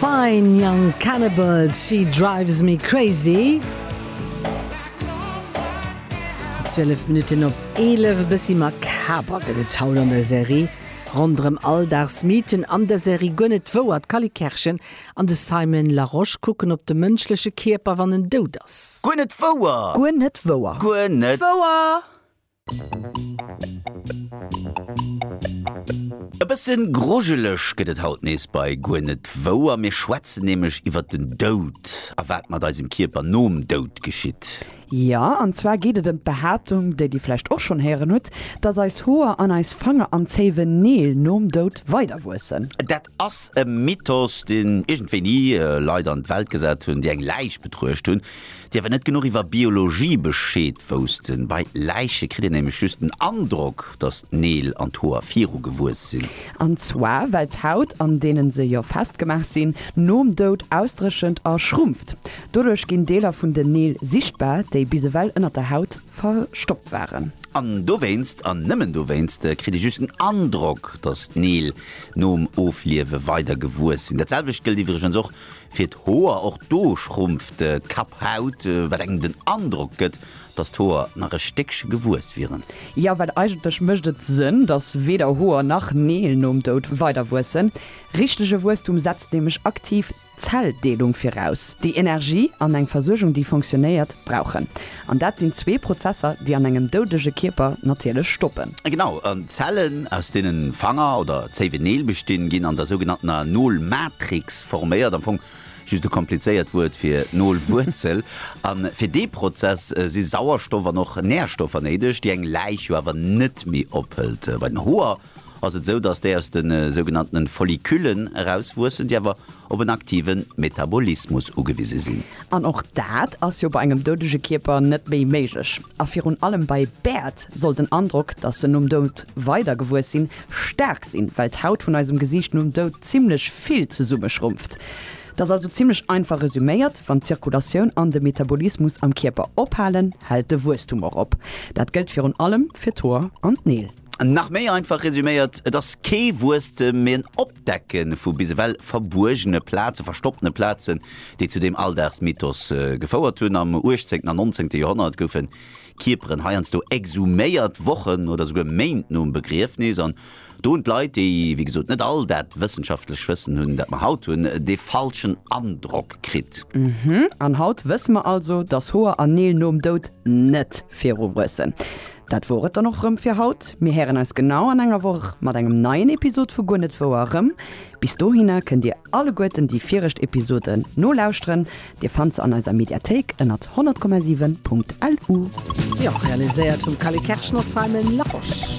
D'Fine Young Cannibals, She Drives Me Crazy. 12 Minutten op 11, e bëssi makaber gëtt et haut an der Serie. Ronderëm Alldagsmythen an der Serie Guer net wouer, d'Cally Kerschen an de Simon Larosche kucken op de mënschleche Kierper, wann en dout ass. Guer net wouer! Guer net wouer! Guer net. Wouer! E bësse grujeleg gëtt et haut nees bei Guer net wou a mir schwätzen nämlech iwwert den Doud a wat mat eisem Kierper nom Doud geschitt. Jo, an zwar geet et ëm d'Behaaptung, déi Dir vläicht och schonn héieren hutt, dass eis Hoer an eis Fanger an Zéiwen, Neel, nom Doud weiderwuessen. Dat Ass e Mythos, deen iergend wéini Leit an d'Welt gesat hunn, déi eng Läich betruecht hunn, déi awer net genuch iwwer Biologie Bescheed woussten. Bei Läiche kritt een nämlech just den Androck, datt d'Neel an d'Hoer viru gewuess sinn. An zwar well d'Haut, an deenen se jo festgemaach sinn, nom Doud ausdréchent a schrumpft. Doduerch ginn Deeler vun den Neel sichtbar, déi bis ewell ënnert der Haut verstoppt waren. An dowéinst, an nëmmen dowéinst, kritt ee just den Androck, datt d'Neel nom Ofliewe weider gewuess sinn. Dat selwecht gëllt iwwregens och fir d'Hoer. Och do schrumpft d'Kapphaut, wat engem den Androck gëtt, datt d'Hoer nach e Stéckche gewuess wieren. Jo, well eigentlech mécht et Sënn, datt weder Hoer nach Neel nom Doud weiderwuessen. Richtege Wuesstum setzt nämlech aktiv. Zelldeelung viraus, déi Energie an eng Versuergung, déi funktionéiert, brauchen. An dat sinn zwee Prozesser, déi an engem doudege Kierper natierlech stoppen. Genau, an d'Zellen, aus deenen Fanger oder zéiwe Neel bestinn, ginn an der sougenanntener Nolmatrix forméiert, am Fong just e komplizéiert Wuert fir Nolwuerzel. A fir dee Prozess si Sauerstoff an och Närstoffer néideg, déi eng Läich jo awer net méi ophëlt. Bei den Hoer ass et esou, datt déi aus de sougenanntene Folliculen erauswuessen, déi awer op en aktive Metabolismus ugewise sinn. An och dat ass jo bei engem doudege Kierper net méi méiglech. A virun allem bei Bäert soll den Androck, datt se nom Doud weider gewuess sinn, staark sinn, well d'Haut vun eisem Gesiicht nom Doud zimmlech vill zesummeschrumpft. Dat ass also zimmlech einfach resüméiert, Wann d'Zirkulatioun an de Metabolismus am Kierper ophalen, hält de Wuesstum och op. Dat gëllt virun allem fir d'Hoer an d'Neel. Nach méi einfach resüméiert, et ass kee Wuesstem, mee en Opdecke vu bis ewell verbuergene Plazen, verstoppene Plazen, déi zu deem Alldagsmythos gefouert hunn. Am uechtzéngten an nonzéngte Joerhonnert goufe Kierperen heiansdo exhuméiert, Wochen oder souguer Méint nom Begriefnis. An do hunn d'Leit, déi wéi gesot net all dat wëssenschaftlecht Wëssen hunn, dat mer haut hunn, dee falschen Androck kritt. An haut wësse mer also, dass Hoer an Neel nom Doud net viru wuessen. Dat wor et dann och rëm fir haut. Mir héieren eis genau an enger Woch mat engem neien Episod vu Guer net wouer erëm. Bis dohinner kënnt dir alleguerten déi viregt Episoden nolauschteren. Dir fannt se an eiser Mediathéik ënnert 100,7.lu. Jo, realiséiert vum Callie Kerschner, Simon Larosche.